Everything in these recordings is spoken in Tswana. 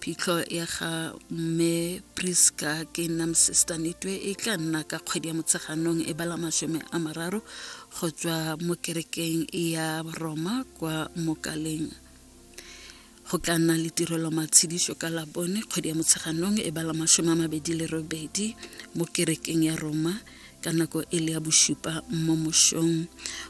phitlho ya ga mme priska ke nam sister nitwe e tla nna ka kgwedi ya motsheganong e bala masome a mararo go tswa mo kerekeng ya roma kwa mokaleng go tla nna le tirelo matshediso ka labone kgwedi ya motsheganong e bala masome a mabedi le robedi mo kerekeng ya roma ka nako e le ya bosupa mo mosong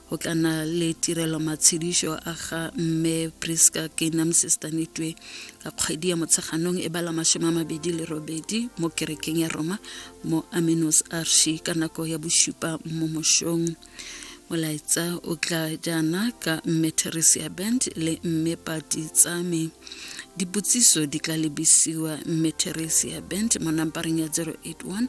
go tla na le tirelo matshedišo a ga mme priska kenam sestanetwe ka kgwedi ya motsheganong e bala masome a mabedi le robedi mo kerekeng ya roma mo aminos arshi ka nako ya bosupa mo mosong molaetsa o tla jaana ka mme theresia band le mme pati tsame dipotsiso di tla lebisiwa mme theresia band mo nampareng ya 081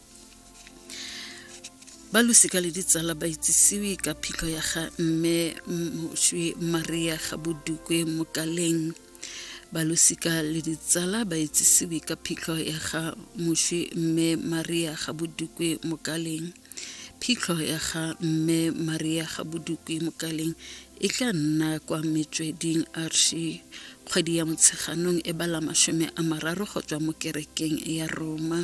ba losika le ditsala ba itsisiwe ka phitlho ya ga mme moswi maria ga bodukwe mokaleng ba losika le ditsala ba itsisiwe ka phitlho ya ga moswi mme maria ga bodukwe mokaleng phitlho ya ga mme maria ga bodukwe mokaleng e tla nna kwa metsweding arshi kgwedi ya motsheganong e bala masome a mararo go tswa mo kerekeng ya roma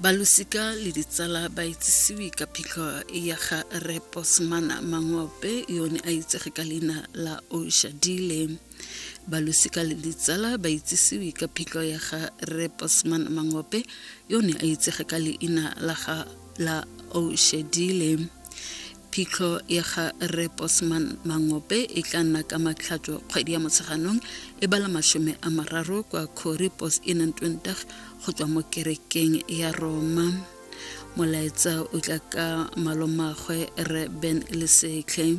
balosika le ditsala ba itsisiwe ka phitlho ya ga reposmana mangwape yone a itsege ka leina la oshadile balosika le ditsala ba itsisiwe ka phitlho ya ga reposman mangwape yone a itsege ka leina la ga la oshadile phitlho ya ga re bosman mangope e tla nna ka matlhatso kgwedi ya motsheganong e bala masome a mararo kwa cori bos e nang twendag go tswa mo kerekeng ya roma molaetsa o tla ka malomagwe re ben lesetlhe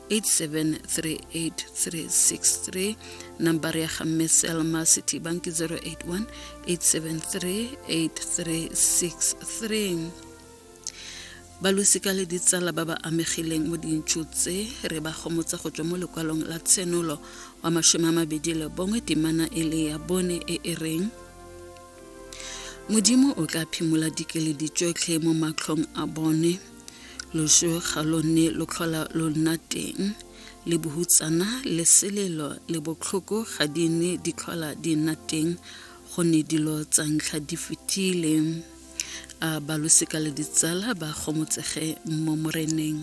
8738363 number ya ga mme selma city bank 081 8738363 balosika le ditsala ba ba amegileng mo dintšho tse re ba gomotsa go tswa mo lekwalong la tshenolo wa masome a mabedi le bongwe temana e le ya bone e e reng modimo o tla phimola dikeledi tsotlhe mo matlhong a bone Loso ga lo ne lo tlhola lo nna teng, le bohutsana le selelo le botlhoko ga di ne di tlhola di nna teng go ne dilo tsa ntlha di fetile. A balosika le ditsala ba gomotsege mo moreneng.